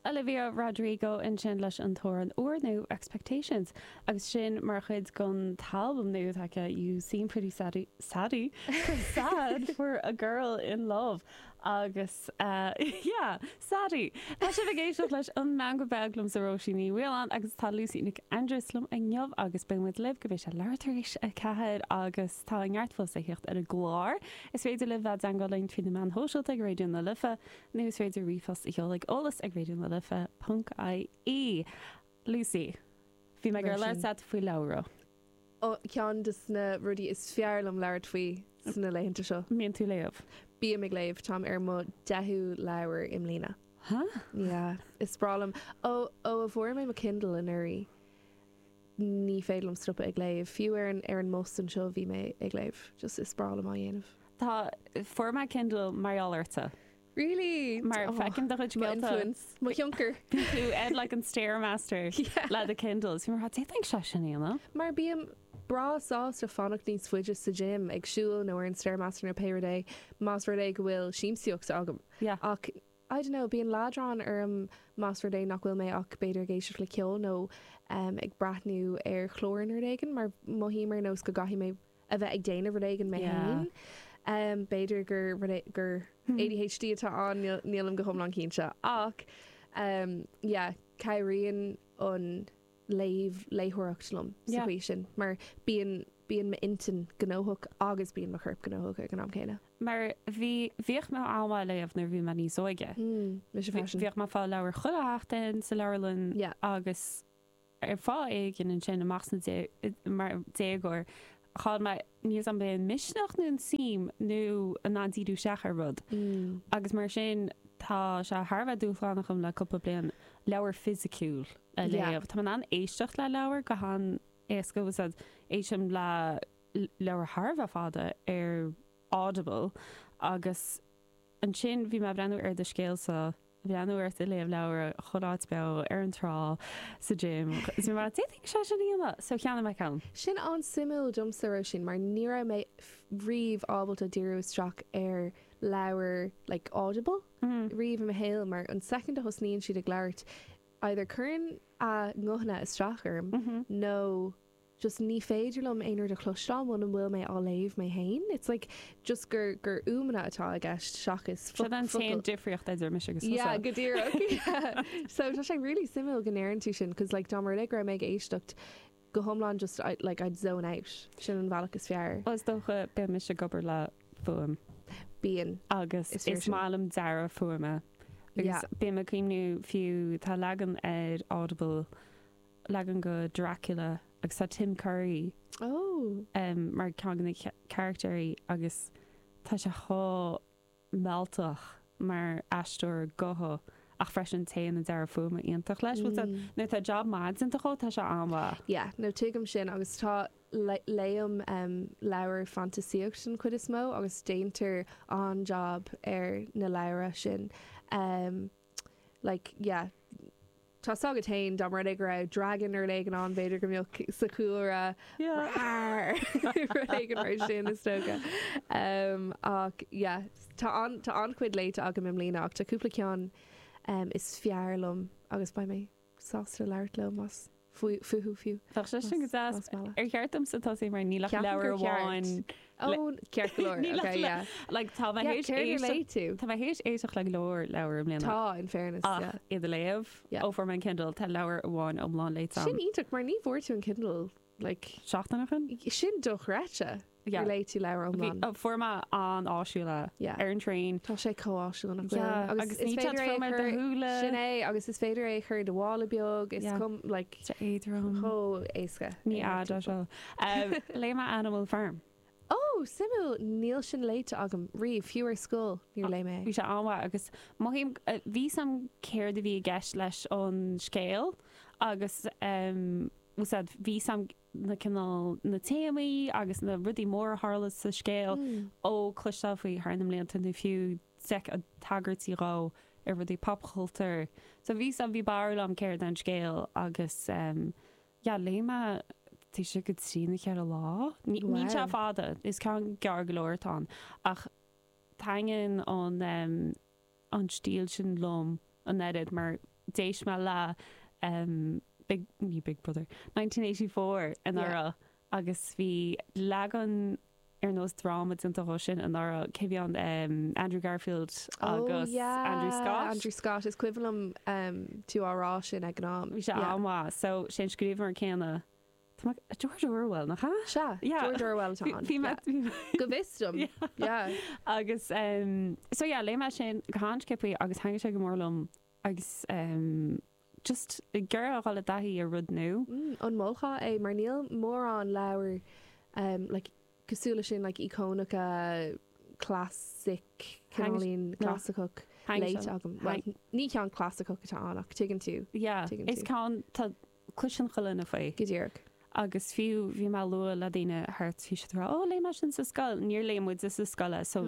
Olivia Rodrigo ansin leis an amhrán úrnua Expectations agus sin mar chuid den albam nua atá aici You Seem Pretty Saddy, Saddy? Sad for a Girl in Love agus yeah, Saddy! Tá sibh ag éisteacht leis an Meangadh Beag liomsa Róisín Ní Mhaoláin agus tá Lucy Nic Aindrias liom inniu agus beidh muid libh go mbeidh sé leathuair tar éis a ceathair agus tá neart fós le thíocht ar an gclár, is féidir libh dul i dteagmháil linn trí na meáin shóisialta ag Raidió na Life. Nó is féidir ríomhphost a sheoladh chuig eolas ag raidionalife ponc ie. Lucy, bhí mé ag labhairt leat faoi leabhra. Ó, ceann des na rudaí is fearr liom labhairt faoi sna laethanta seo. mbíonn tú léamh? Bím ag léamh, táim ar mo deichiú leabhar i mbliana. Huh? Yeah, is breá liom. Ó, ó a fuair mé mo Kindle anuraidh. Ní féidir liom stopadh ag léamh. Fiú ar an, ar an mbus anseo bhí mé ag léamh. Just is breá liom é a dhéanamh. Tá, fuair mé Kindle mar gheall ortsa. Really? Mar Oh, feicim do chuid mo scéalta. influence, mo thionchar. Bíonn tú ar like an stairmaster Yeah. le do Kindle. Is bhí mé ag rá, d'fhéadfainnse é sin a dhéanamh. Mar bím breá sásta fanacht níos faide sa gym, ag siúl nó ar an stairmaster nó pé rud é, más rud é go bhfuil siamsaíocht agam. Yeah. Ach I dunno, bíonn leadrán orm más rud é nach bhfuil mé ach b'fhéidir ag éisteacht le ceol nó ag breathnú ar chlár nó rud éigin mar mothaím ar nós go gcaithfidh mé a bheith ag déanamh rud éigin mé féin. B'fhéidir gur ADHD atá ann, nílim go hiomlán cinnte. Ach yeah, cabhraíonn an. léamh, léitheoireacht liom sa chaoi sin, mar bíonn, bíonn m'intinn gnóthach agus bíonn mo chorp gnóthach ag an am céanna. Mar bhí, bhíodh mé ag léamh nuair a bhí mé níos óige. Mise freisin. Bhíodh mé ag fáil leabhair chuile sheachtain sa leabharlann agus ar fáth éigin ansin amach sna, mar déagóir, chaill mé, níl 's agam ab in misneach nó an tsuim nó an an-díriú isteach ar rud. Agus mar sin, tá sé thar a bheith dúshlánach dom le cúpla bliain leabhar fisiciúil a léamh. Tá mé in ann éisteacht le leabhar go han-éasca, agus éistim le leabhair thar a bheith fada ar Audible, agus. Ansin bhí mé a' breathnú ar do scéalsa, breathnú ort a' léamh leabhar, chuile áit beo, ar an trá, sa gym, is mé a' rá, d'fhéadfainnse é sin a dhéanamh! So cheannaigh mé ceann. Sin an-suimiúil domsa, Róisín, mar ní raibh mé riamh ábalta díriú isteach ar leabhar like audible riamh i mo shaol mar an soicind a thosnaíonn siad ag labhairt either cuireann a nguthanna isteach orm nó just ní féidir liom aon rud a chloisteáil muna bhfuil mé á léamh mé fhéin, it's like just gur gur fhuaimeanna atá i gceist seachas focail. Sin an t-aon difríocht idir mise agus tusa. Yeah, go díreach. So tá sé really suimiúil go ndeireann tú sin, 'cause like dá mba rud é go raibh mé ag éisteacht go hiomlán just I, like I'd zone out. Sin an bhealach is fearr. Is dócha, bím-se ag obair le fuaim. Bíonn. Agus is maith liom dearadh fuaime. Agus Yeah. bím ag cuimhniú fiú, tá leagan ar Audible, leagan de Dracula agus tá Tim Curry mar cheann de na carachtair agus tá sé chomh mealltach mar aisteoir gutha ach freisin téann an dearadh fuaime iontach leis. Bhuel nuair atá jab maith déanta agat tá sé an-mhaith. Yeah no tuigim sin agus tá, léim leabhra fantaisíochta den chuid is mó agus déantar an-jab ar na leabhra sin. Like, yeah. Tá so agat féin, dá mba rud é go raibh dragan ar leith ann, b'fhéidir go mbeadh sa chúlra Rar! ar leagan mar sin, is dócha. Umm, ach, yeah, tá an, tá an-chuid léite agam i mbliana, ach tá cúpla ceann is fearr liom agus beidh mé. sásta labhairt leat fúthu fiú. Tá sé sin go deas. Ar cheart domsa tosaí mar níl ach leabhar amháin le. Ó, ceart go leor, ok, yeah. Like tá mé théis éisteacht. Céard a léigh tú? Tá mé théis éisteacht le go leor leabhar i mbliana. Tá, in fairness, yeah. Ach iad a léamh, ó fuair mé an Kindle, tá leabhar amháin iomlán léite agam. Sin iontach, mar ní bhfuair tú an Kindle like. Seachtain ó shin? Sin dochreidte. Yeah. Léigh tú leabhar iomlán. Bhí sé fíor, an-áisiúil. Yeah. Ar an traein. Tá sé chomh áisiúil nach bhfuil. Yeah. Agus is féidir é a chur. Agus níl sé trom ar do shúile. Sin é, agus is féidir é a chur i do mhála beag. Tá sé chomh, like. Tá sé éadrom. Chomh éasca. Ní fhada seo. Léigh mé Animal Farm. Ó! Suimiúil. Níl sin léite agam riamh, fiú ar scoil níor léigh mé é. Bhí sé an-mhaith agus mothaím go raibh a fhios agam céard a bhí i gceist leis an scéal agus bhí a fhios agam na cineál na téamaí agus na rudaí móra a tharla sa scéal ó chloisteáil faoi thar na blianta nó fiú d'fheicfeá tagairtí dhó i rudaí popchultúir. So bhí a fhios agam bhí barúil agam céard é an scéal agus. yeah léigh mé é taobh istigh de cheithre lá ní níl sé fada is ceann gearr go leor atá ann ach taitníonn an um an stíl sin liom an oiread mar d'éist mé le um big ní big brother nineteen eighty four an Orwell. agus bhí leagan ar nós dráma déanta dhó sin anuraidh, cé bhí ann, Andrew Garfield agus Andrew Scott. Oh yeah, Andrew Scott, is cuimhin liom tú á rá sin ag an am. Bhí sé an-mhaith, so is é an scríbhneoir céanna, tá mé, George Orwell, nach ea? Sea, George Orwell atá ann. Bhí mé, bhí mé. Go bhfios dom, yeah. Agus, so yeah, léigh mé sin go han-sciobthaí agus thaitin sé go mór liom. Agus just ag iarraidh a dhul i dtaithí ar rud nua. Mm, an molfá é? Mar níl mórán leabhair like cosúil leis sin, like íocónacha, classic, cineáilín clasaiceach léite agam. Ní ceann clasaiceach atá ann ach tuigeann tú. Yeah, is ceann, tá. Cloiseann chuile dhuine faoi. Go díreach. Agus fiú, bhí mé ag lua le daoine thart, bhí siad ag rá, 'Ó, léigh mé sin sa scoil. Níor léigh muide sa scoil é, so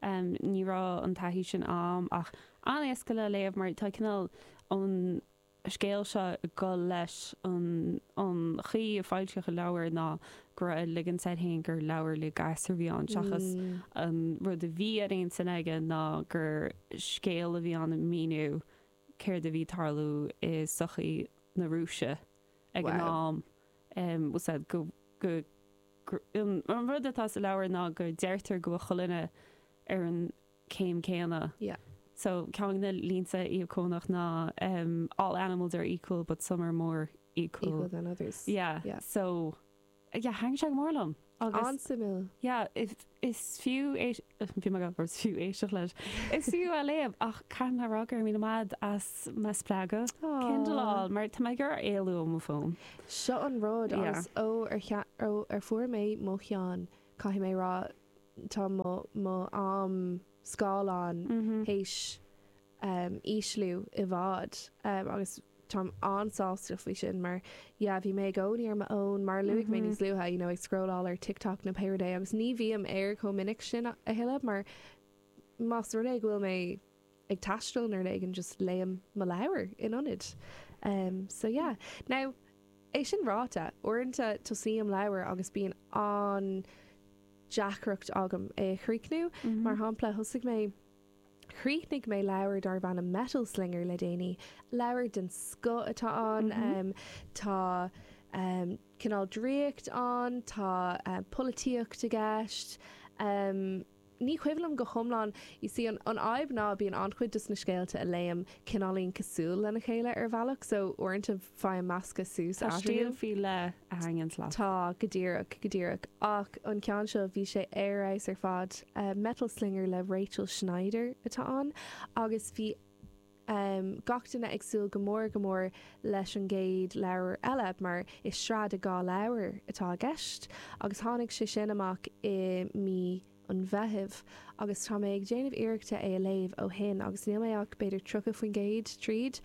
ní raibh an taithí sin a'm, ach an-éasca le léamh mar tá cineál an scéal seo ag dul leis an, an chaoi ar foilsíodh an leabhar ná go raibh, ag ligean air féin gur leabhar le gasúir a bhí ann seachas an rud a bhí ar intinn aige ná gur scéal a bhí ann ag míniú céard a bhí ag tarlú i sochaí na Rúise ag an am. An rud atá sa leabhar ná go ndeirtear go bhfuil chuile dhuine ar an gcéim céanna. Ceann de na línte íocónach ná All animals are equal but some are more equal than others. Yeah, thaitin sé go mór liom agus. An-suimiúil. Yeah, is fiú éisteacht, bhí mé ag gabháil a rá fiú éisteacht leis, is fiú a léamh ach caithfidh mé a rá go raibh mé in éad, do mo spreagadh Kindle a fháil mar tá mé ag iarraidh éalú ó mo fón. Seo an rud agus ó a fuair mé mo cheann caithfidh mé a rá tá mo am scáileáin tar éis um ísliú i bhfad um agus táim an-sásta faoi sin mar yeah bhí mé i gcónaí ar m'fhón mar a luaigh mé níos luaithe you know ag scrólláil ar TikTok nó pé rud é agus ní bhím air chomh minic sin a thuilleadh mar más rud é go bhfuil mé ag taisteal nó rud éigin just léim mo leabhar in ionad um so yeah now é sin ráite uaireanta tosaím leabhar agus bíonn an-deacracht agam é a chríochnú mar shampla thosaigh mé Chríochnaigh mé leabhar darbh ainm Metal Slinger le déanaí. Leabhar den scoth atá ann. Tá cineál draíocht ann, tá polaitíocht i gceist. Ní cuimhin liom go hiomlán, you see, an fhadhb ná bíonn an-chuid dos na scéalta a léim cineáilín cosúil lena chéile ar bhealach, so uaireanta, Faighim measctha suas Tá eatarthu. stíl faoi leith a thaitníonns leat. Tá, go díreach, go díreach. Ach an ceann seo, bhí sé ar fheabhas ar fad. Metal Slinger le Rachel Schneider atá ann agus bhí em gach duine ag súil go mór, go mór leis an gcéad leabhar eile mar is sraith de dhá leabhar atá i gceist agus tháinig sé sin amach i mí an Mheithimh agus tá mé ag déanamh iarrachta é a léamh ó shin agus níl mé ach b'fhéidir 30% tríd.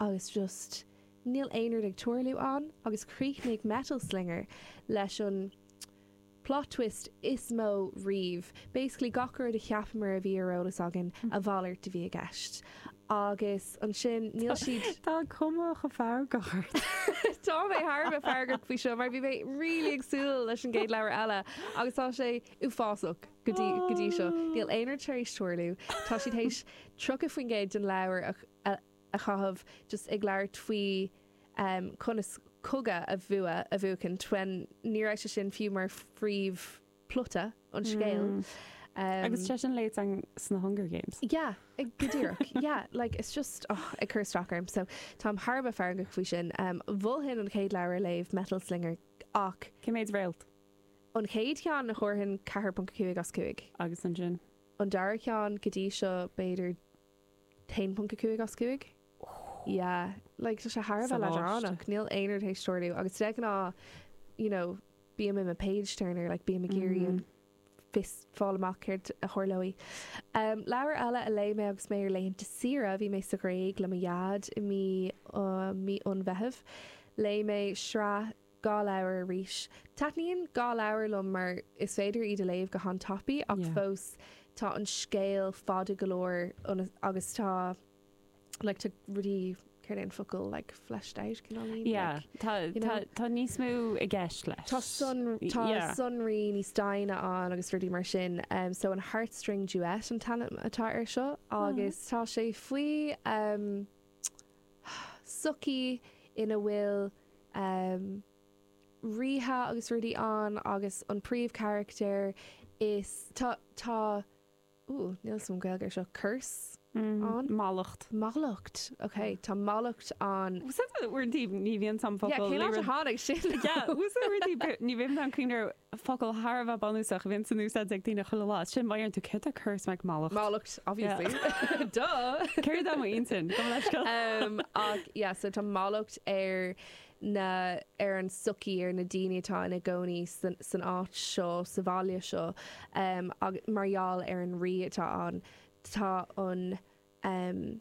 Agus just níl aon rud ag tarlú ann agus chríochnaigh Metal Slinger leis an plot twist is mó riamh, basically gach rud a cheapamar a bhí ar eolas againn, a mhalairt a bhí i gceist. Agus ansin níl siad. Tá cuma chomh feargach ort. Tá mé thar a bheith feargach faoi seo mar bhí mé really ag súil leis an gcéad leabhar eile agus tá sé uafásach go dtí seo. Níl aon rud tar éis tarlú. Tá siad th'éis tríocha faoin gcéad den leabhar a, a, a chaitheamh just ag labhairt faoi conas cogadh a bhua, a bhuachaint, nuair ní raibh sé sin fiú mar phríomhphlota an scéil. Agus sé sin léite an sna Hunger Games. Yeah, ag, go díreach. Yeah, like it's just, oh, ag cur isteach orm. So, táim thar a bheith feargach faoi sin. Mholfainn an chéad leabhar a léamh, Metal Slinger, ach. Cé méid réalt? An chéad cheann, thabharfainn 4.5 as 5. Agus ansin? An dara ceann, go dtí seo, b'fhéidir. 1.5 as 5. Yeah. Like, tá sé thar a bheith leadránach. Níl aon rud th'éis tarlú. Agus de ghnáth, you know, bím i mo page turner, like, bím ag iarraidh, you know, fáil amach céard a tharlóidh. Um, leabhar eile a léigh mé agus mé ar laethanta saoire, bhí mé sa Ghréig le mo dhaid i mí, uh, mí an Mheithimh, léigh mé sraith, Dhá leabhar arís. Taitníonn dhá leabhar liom mar is féidir iad a léamh go han-tapaidh ach fós tá an scéal fada go leor agus tá like tá rudaí, céard é an focal, like fleshed out, cineáilín? Yeah, tá, tá, tá níos mó i gceist leis. Tá sonraí, tá sonraí níos doimhne ann agus rudaí mar sin. So an Heartstring Duet an t-ainm atá air seo agus tá sé faoi, sochaí ina bhfuil ríthe agus rudaí ann agus an príomhcharachtar so tá tá uh níl fhios a'm an Gaeilge ar seo curse ann? Mallacht. Mallacht ok tá mallacht ann. Uaireanta ní bhíonn an focal. Yeah cén áit ar tháinig sin? Yeah uaireanta ní bhíonn an cuimhne focal thar a bheith bunúsach a bhíonns in úsáid ag daoine chuile lá. Sin, má deireann tú céard é curse, like mallacht. Mallacht, obviously. Yeah. Duh! Céard é m'intinn? Gabh mo leithscéal. Um, ach, yeah, so tá mallacht ar na, ar an sochaí, ar na daoine atá ina gcónaí san, san áit seo, sa bhaile seo, um, agus mar gheall ar an rí atá ann. Tá an, um,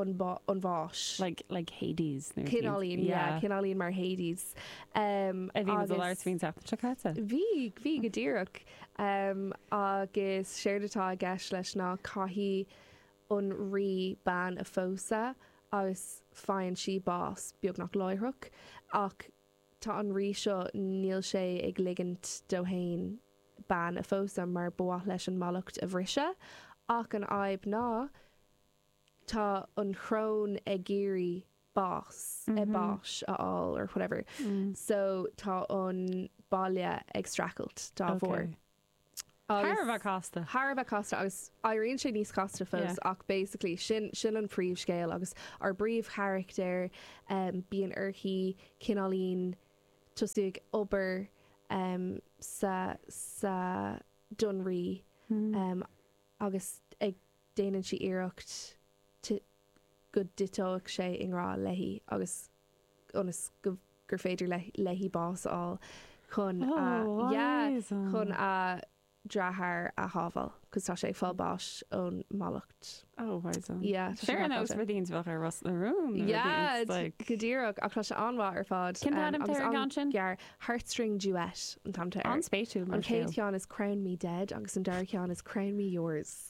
an bháis. Like, like Hades nó. Cineáilín, yeah, cineáilín mar Hades. A bhí muid i lár smaointe an tseachtain seo caite. Bhí, bhí go díreach. Agus séard atá i gceist leis ná caithfidh an rí bean a phósadh agus faigheann sí bás beagnach láithreach. Ach tá an rí seo, níl sé ag ligint d'aon bhean é a phósadh mar ba mhaith leis an mallacht a bhriseadh. Ach an fhadhb ná tá an choróin ag iarraidh bás, eh báis, a fháil or whatever so tá an baile ag streachailt dá bharr. Agus. Thar a bheith casta. Thar a bheith casta agus éiríonn sé níos casta fós ach basically sin, sin an príomhscéal agus ár bpríomhcharachtair, em bíonn uirthi cineáilín tosú ag obair em sa, sa, don rí em agus ag déanann sí iarracht go dtiteodh sé i ngrá léi agus ionas gur féidir léi bás a fháil chun a, yeah, chun a deartháir a shábháil, cos tá sé ag fáil báis ón mallacht. Oh, why so? Yeah, tá sé Fair enough, rud ínteanach ar Ros na Rún. Yeah, go díreach, ach tá sé an-mhaith ar fad. Cén t-ainm atá ar an gceann sin? Gearr, Heartstring Duet an t-ainm air. An-spéisiúil mar scéal. An chéad cheann is Crown Me Dead agus an dara ceann is Crown Me Yours.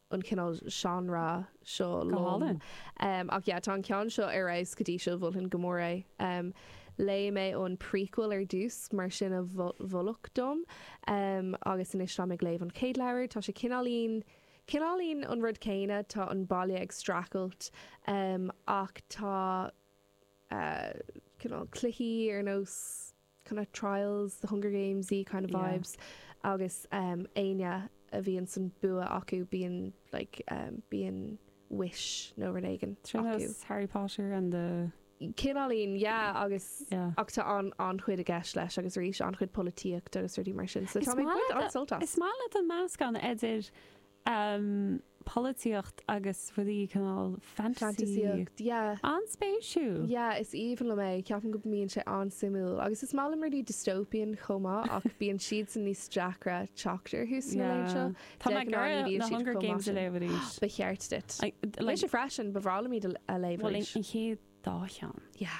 an cineál seánra seo liom. Ach yeah, tá an ceann seo ar fheabhas go dtí seo, mholfainn go mór é. Léigh mé an prequel ar dtús, mar sin a moladh dom, agus anois táim ag léamh an chéad leabhair. Tá sé cineáilín, cineáilín an rud céanna, tá an baile ag streachailt, ach tá cineál cluichí ar nós. kind of trials, the Hunger Games-y kind of vibes, agus éinne a bhíonn san bua acu bíonn like bíonn wish nó rud éigin acu. Sin as Harry Potter and the. Cineáilín, yeah, agus ach tá an-chuid i gceist leis agus arís an-chuid polaitíocht agus rudaí mar sin, so tá mé ag baint an-sult as. Is maith leat an meascán idir Um polaitíocht agus rudaí cineál fantasy. Fantaisíocht, yeah. An-spéisiúil! Yeah, is aoibhinn liom é, ceapaim go mbíonn sé an-suimiúil. Agus is maith liom rudaí dystopian chomh maith ach bíonn siadsan níos deacra teacht orthu sna laethe seo. Yeah. De ghnáth ní bhíonn siad chomh maith sin. Tá mé ag iarraidh na Hunger Games a léamh arís. Ba cheart duit. I- like- Mise freisin, ba bhreá liom iad a- a léamh arís. Bhuel, an, an chéad dá cheann. Yeah.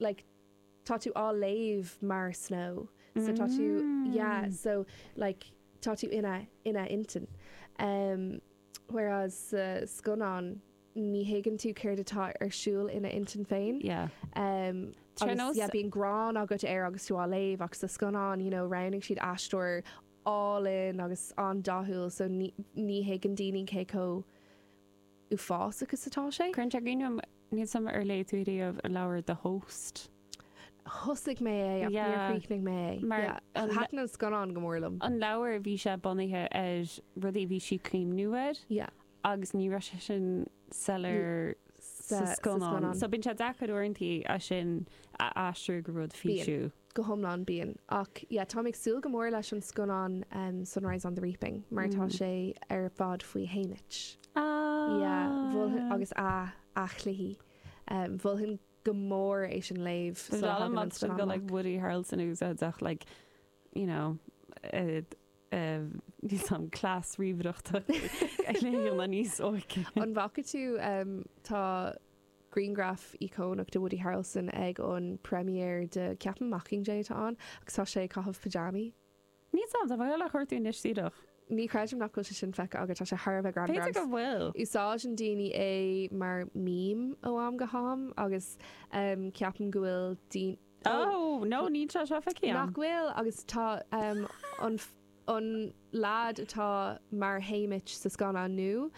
like tá tú á léamh mar Snow so tá tú yeah Mm. so like tá tú ina ina intinn em whereas sa scannán ní thuigeann tú céard atá ar siúl ina intinn féin yeah em Tre agus nos yeah bíonn gráin agat air agus tú á léamh ach sa scannán you know roghnaigh siad aisteoir álainn agus an-dathúil so ní ní thuigeann daoine cé chomh uafásach is atá sé. Cuireann sé grinn orm. Níl suim Ar léigh tú riamh an leabhar The Host? Thosaigh mé é ach níor chríochnaigh mé é. Yeah. Thaitin an scannán go mór liom. An leabhar, bhí sé bunaithe ar rudaí a bhí sí ag cuimhneamh air. Yeah. Agus ní raibh sé sin soiléir sa scannán. So bíonn sé deacair uaireanta é sin a aistriú go rud físiúil. Bíonn. go hiomlán binn. Ach yeah, táim ag súil go mór leis an scannán Sunrise on the Reaping mar tá sé ar fad faoi Haymitch. Yeah, mholfainn, agus a chluichí. Mholfainn go mór é sin a léamh sula dtagann an scannán amach. Is dóigh liom go like Woody Harrelson a úsáid ach like, you know, níl sam class ríomhaireachta ag léamh níos óige. An bhfaca tú, tá. Grianghraf íocónach de Woody Harrelson ag an premiere de, ceapaim Mockingjay atá ann agus tá sé ag caitheamh pajamaí. Níl, tá mé le cuartú anois díreach. Ní chreidim nach bhfuil sé sin feicthe agat, tá sé thar a bheith greannmhar B'fhéidir go bhfuil. Agus úsáideann daoine é mar meme ó am go ham agus em ceapaim go bhfuil daoine oh Oh no, níl sé seo feicthe agam. Nach bhfuil? Agus tá em an an lad atá mar Haymitch sa scannán nua,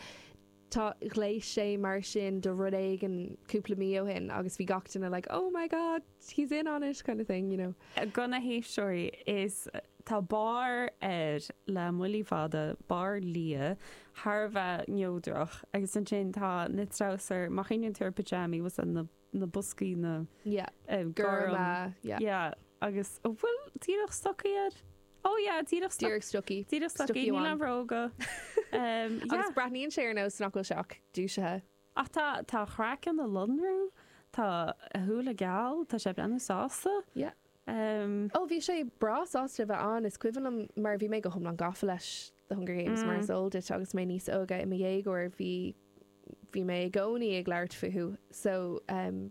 Tá, ghléas sé mar sin do rud éigin cúpla mí ó shin agus bhí gach duine like oh my god, he's in on it kind of thing, you know. Do na héisteoirí, is tá barr air le muinchillí fada, barr liath, thar a bheith neodrach agus ansin tá na treabhsair, má chuimhníonn tú ar pajamaí, what's that, na. na boscaí, na gorm, yeah, agus, an bhfuil díreach stocaí air? Ó, yeah, díreach stocaí. Díreach stocaí. Díreach stocaí, níl aon bhróga. Agus breathnaíonn sé ar nós nach bhfuil sé ach dúisithe. Ach tá, tá a chraiceann ag lonrú, tá a shúile geal, tá sé ag breathnú sásta. Yeah. Ahem. Ó, bhí sé breá sásta a bheith ann, is cuimhin liom, mar bhí mé go hiomlán gafa leis The Hunger Games, mar is eol duit, agus mé níos óige, i mo dhéagóir, bhí, bhí mé i gcónaí ag labhairt fúthu, so, ahem.